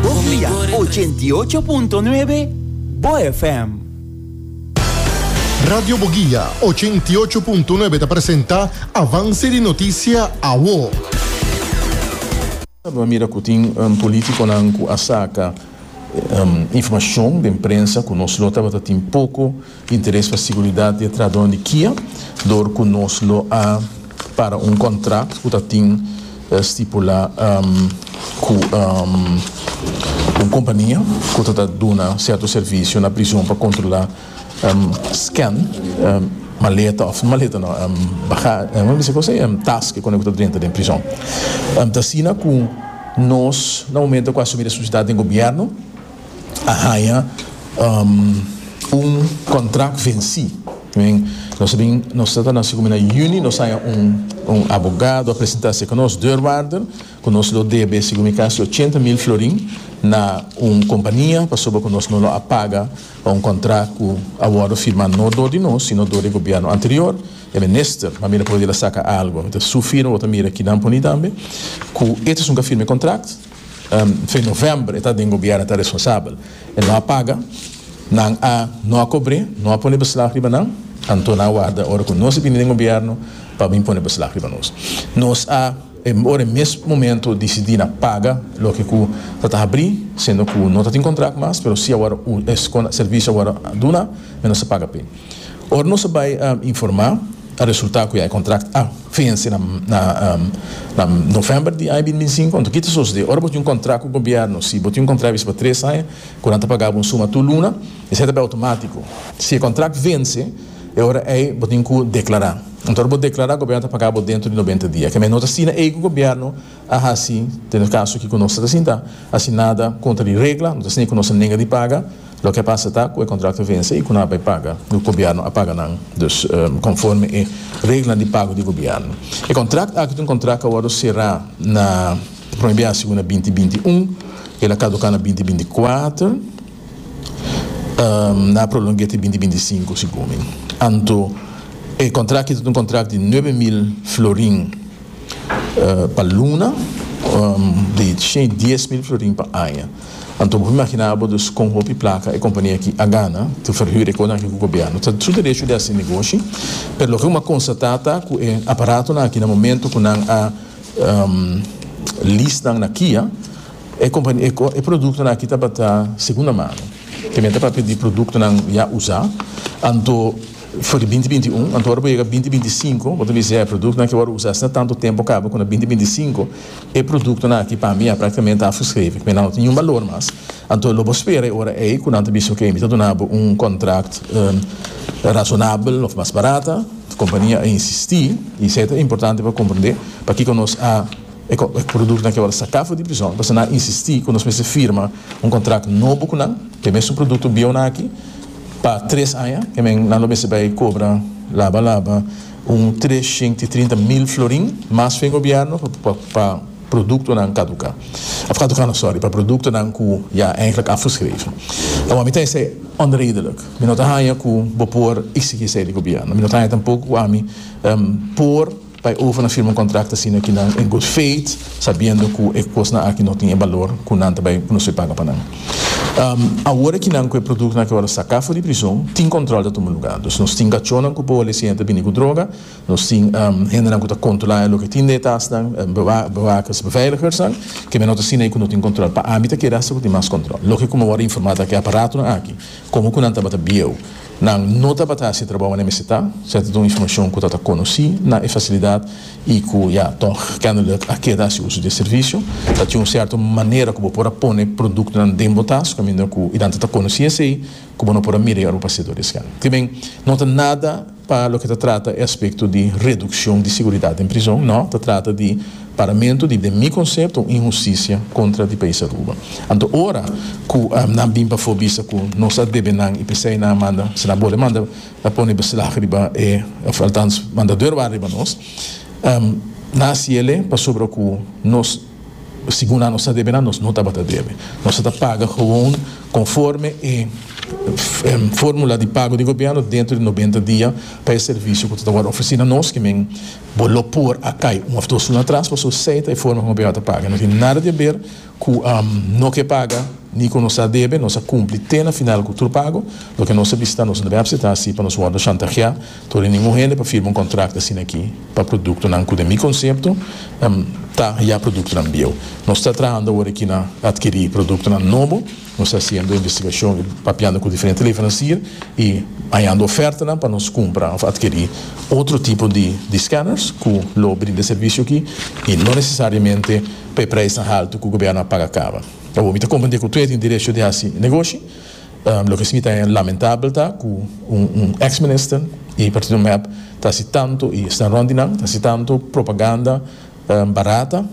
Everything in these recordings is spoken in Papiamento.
Bofia ochenta i ocho punto nuebe Bo FM. Radio Boguia ochenta i ocho punto nuebe ta presenta Avance di Noticia Awo. Bo a mira cu tin politiconan cu a saca informacion den prensa cu nos lo tabata tin poco. Interes pa siguridat di e trahadónan di Kia dor ku nos lo a para un kontrakt ku ta tin stipulá ku un kompania ku ta ta duna sierto servisio na prison pa kontrolá scan maleta òf maleta no baga kòmo mi bisa kos ei tas ke kòne ku ta drenta den prison ta asina ku nos na momento ku asumí responsabilidat den gobièrnu. a haña un contract venci men nos bin nos ta ta naci na juni nos haña un abogado a presenta seca nos deurwaarder cu nos lo debe segun mi casi ochenta mil florin na un compania pasobra cu nos no lo a paga pa un contract cu a wordo firma no door di nos sino door di e gobierno anterior e minister ma mi ta probeer a saca algo mi ta su firma bo ta mira kidan poni tambe cu e ta esun cu a firma e contract. Fin novèmber e ta den gobièrnu ta responsabel e no a paga nan a no a kobr'é no a pone beslag riba nan anto nan a warda ora ku nos a bini den gobièrnu pa bin pone beslag riba nos nos a ora e mes momento disidi na paga loke ku ta ta habri sendo ku no ta tin kontrak mas pero si awor e servisio awor a duna nos a paga p'e ora nos a bai informa. a resulta cu ya e contract a venci na november di aña bin binsingco. Enton ki ta sosode? Ora bo tin un contract cu gobierno, si bo tin un contract bisti pa tres aña cu nan ta paga bo un suma tur luna, esey ta bay automatico. Si e contract venci, e ora ey bo tin cu declara. Enton ora bo declara, gobierno ta paga bo dentro di noventa dia. Kemey no ta asina ey cu gobierno. a hasi den e kaso kiko nos ta sinta hasi nada kontra di regla, no ta sinia ku nos a nega di paga, loke a pasa ta ku e kontrakto a vense i ku nan a bai paga, ku gobièrnu a paga nan dus konforme e reglanan di pago di gobièrnu. E kontrakt aki ta un kontrakt ku a wòrdu será na prome bia siu na binti binti i un, el a kaduká na binti binti i kuater, nan a prolong'é te binti binti i sinku si gumi. Anto e kontrakt aki ta un kontrakt di nuebe mil florin. Pa luna di shei dies mil florin pa aña. Anto bo por imagina abo dus kon hopi plaka e kompania aki a gana te ferhür e konan aki ku gobièrnu. Ta su derecho di hasi negoshi, pero loke bo a konstatá ta ku e aparatonan aki na momento ku nan a lease nan na Kia e produktonan aki tabata segunda mano. Te mester pa pidi produktonan ya usá. Anto. For di binti binti un, anto ora bo yega binti binti sinku bo ta bisa e produktonan ke bo a rusa asina tantu tempu kaba ku na binti binti sinku e produktonan aki pa mi ya praktikamente a fuskrevi ku mi nan no tin niun balor mas anto lo bo spera e ora ei ku nan ta bisa oke mi ta duna bo un kontrakt rasonabel òf mas barata kompania a insisti i esei ta importante pa komprende pakiko nos a e produktonan ke ora saka for di prizòn pasobra nan a insisti ku nos mester firma un kontrakt nobo ku nan ku e mesun produkto bieunan aki. Pa tres aña e men nan lo mester bai cobra laba laba un trescientos y trinta mil florin mas fen gobierno pa productonan caduca, of caduca no sorry, pa productonan cu ya eigenlijk afgeschreven. Awor mi ta esey onredelijk. Mi no ta haya cu bo por exigi esey di gobierno. Mi no ta haya tampoco cu ami por. Pa e overnan firma un kontrakto asina aki nan en good faith, sabiendo ku e kosnan aki no tin e balor ku nan ta bai konosé paga pa nan. Awor aki nan ku e produktonan aki awor a saká for di prizon, tin kòntròl ta tuma lugá. Dus nos tin kachónan ku por lesiña ta bini ku droga, nos tin hendenan ku ta kontrolá loke tin den e tasnan, bewakers, beveiligersnan, kemia no ta asina ei ku no tin kòntròl. Pa ami ta kere asta ku tin mas kòntròl. Loke ku mi awor a informá ta aki aparatonan aki, komo ku nan tabata bieu. Nan no tabata hasi trabou mane mester ta, se a ta duna informacion cu ta ta conoci na e facilidad y cu ya tog kennelijk a keda haci uso di e servicio. Ta tin un cierto manera cu bo por a pone productonan den bo tas, caminda cu y danta ta conoci esey cu bo no por a mira y ora bo pasea door di esken. Kiben, no ta nada pa loke ta trata e aspecto di reduccion di seguridad den prizon, no, ta trata di. Paramentu di den mi konsepto un inhustisia kontra di País Aruba. Anto ora ku nan bin pafó bisa ku nos a debe nan i p'esei nan a manda si nan bole manda a pone beslag riba e òf altans manda dor wak riba nos nan a siele pasobra ku nos segun nan nos ta debe nan nos no tabata debe nos a ta paga gewoon konforme e fórmula di pago di gobièrnu dentro di nobenta dia pa e servisio ku ta wòrdu ofresí na nos ke men Bo lo por a kai un of dos luna atras paso sei ta e forma ku Abiatar paga. No tin nada di haber ku no ke paga ni ku nos a debe. Nos a kumpli te na final ku tur pago. Loke nos a bisa ta nos no debe apseta asi pa nos wòrdu shantahiá tur di ningun hende pa firma un kontrakto asin'akí pa produktonan ku den mi konsepto ta ya produktonan bieu. Nos ta trahando awor aki na atkirí produktonan nobo. Nos ta hasiendo investigashon i papiando ku diferente leveransier i hañando ofertanan pa nos kumpra òf atkirí otro tipo di di skanners ku lo brinda e servisio akí i no nesesariamente pa e preisnan haltu ku gobièrnu a paga kaba. Awor mi ta komprendé ku tur e tin derecho di hasi negoshi. Loke si mi ta haña lamentabel ta ku un un eks minister i partido mep ta hasi tantu i sta rònt di nan ta hasi tantu propaganda, Barata,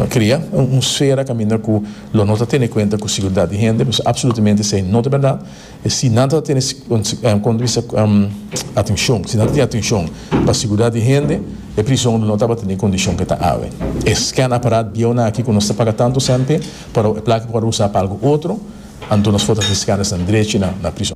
Cria un sfera caminda cu lo no ta tene cuenta cu seguridad di hende, pues absolutamente esey no ta berdad. Si nan ta tene punto di vista atencion, si nan ta tin atencion pa seguridad di hende e prison lo no tabata den e condicion cu e ta awe. E scan apparat bieunan aki cu nos ta paga tanto cente pero e placa por usa pa algo otro, anto nos por ta tin scan esnan drechi na prison.